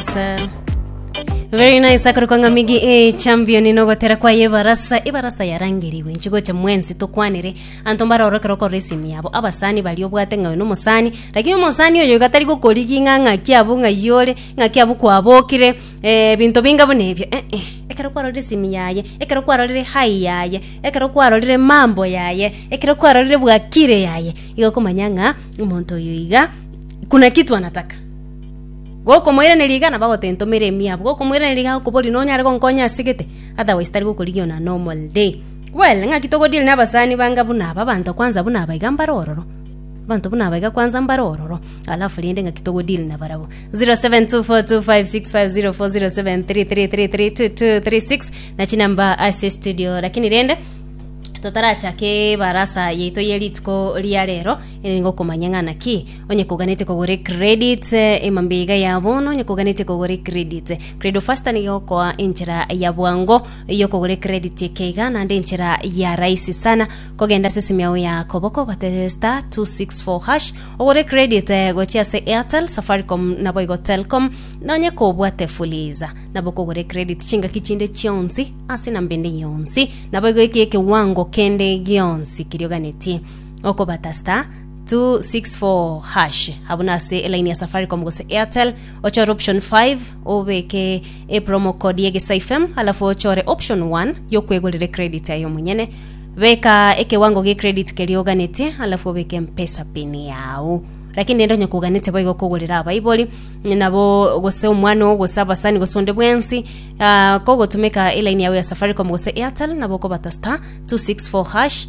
Sa- Very nice akorokanga migi e champion inogotera kwa yebarasa ibarasa yarangerigwe nchigocha mwensi tokwanire anto mbarorokera okora esimu yabo abasani bari obwate ng'a no mosani lakini omosani oyo gatari gokorigi ng'a ng'aki abwo ng'ayore ng'aki abwo kwabokire eh, binto binga buna ebio eh, eh. ekero kwarorire esimu yaye ekero kwarorire hai yaye ekero kwarorire mambo yaye ekero kwarorire bwakire yaye igo okomanya ng'a omonto oyo iga kuna kitu anataka Gokomoiraneria igana bagotentomera emiabo, gokomoiraneria igana gokoboria nonyare gonkonya ase gete, otherwise tari gokorigia ona normal day. Well, ng'aki togo deal na abasani banga buna aba, abanto kwanza buna aba iga mbare ororo. Abanto buna aba iga kwanza mbare ororo, alafu rende ng'aki togo deal na barabwo. 072426504073333236 na chinamba ase studio lakini rende totarachake ebarasa yaito ye rituko ria rero, ere nigo okomanya ng'a naki Onye koganete kogora ecredit, ema mbiiga ya bono. Onye koganete kogora ecredit, Credo Faster nigo egokoa enchera ya bwango y'okogora ecredit ekeiga, naende enchera ya rahisi sana. Kogenda ase esimi yao ya koboko, obate star 264 hash, ogore ecredit eh, gochia ase Airtel, Safaricom, naboigo Telcom, na onye kobwate Fuliza, nabo okogora ecredit chingaki chinde chionsi ase enamba ende yonsi, naboigo eki ekewango kende gionsi keria oganetie okobata star 264#. Abuna ase elaini ya Safaricom gose Airtel, ochore option 5, obeke epromo code ye Gesaifem, alafu ochore option 1 yokwegorera ecredit aye omonyene. Beka ekewango gie credit keria oganetie, alafu obeke mpesa pin yao. Lakini rende onye koganete boigo kogorera abaibori nabo gose omwana oo gose abasani gose onde bwensi ah, kogotumeka elaini yao ya Safaricom gose Airtel nabo okobata star 264 hash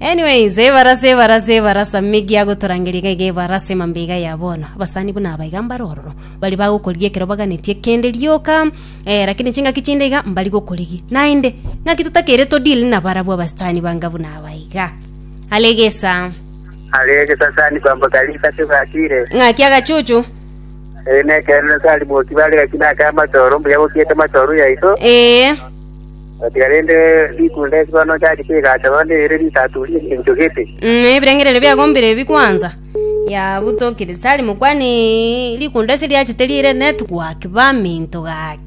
Anyways, ebarasa, ebarasa, ebarasa, Megi agotorangeria iga iga ebarasa emambe iga ya bono. Abasani buna aba iga mbare ororo. Bari bagokorigia ekero baganetie kende rioka, eh, lakini chingaki chinde iga mbari gokorigia. Naende, ng'aki totakeire to deal nabarabwo abasani banga buna aba iga. Are egesa. Are egesasani kwamboka risache bwakire. Ng'aki agachuchu. Ere nekerero tari moki bare gaki nake amatoro mbuya bokiete matoro yaito. Eh. Gotiga rende rituko ndesibore nocharie chigacha nonya ere risato egencho gete. Mm, ebirengererio biago mbire ebi kwanza. Yabutokirie Sali mokwane, Rikunda ase riachete riire netuguaki baminto gaki.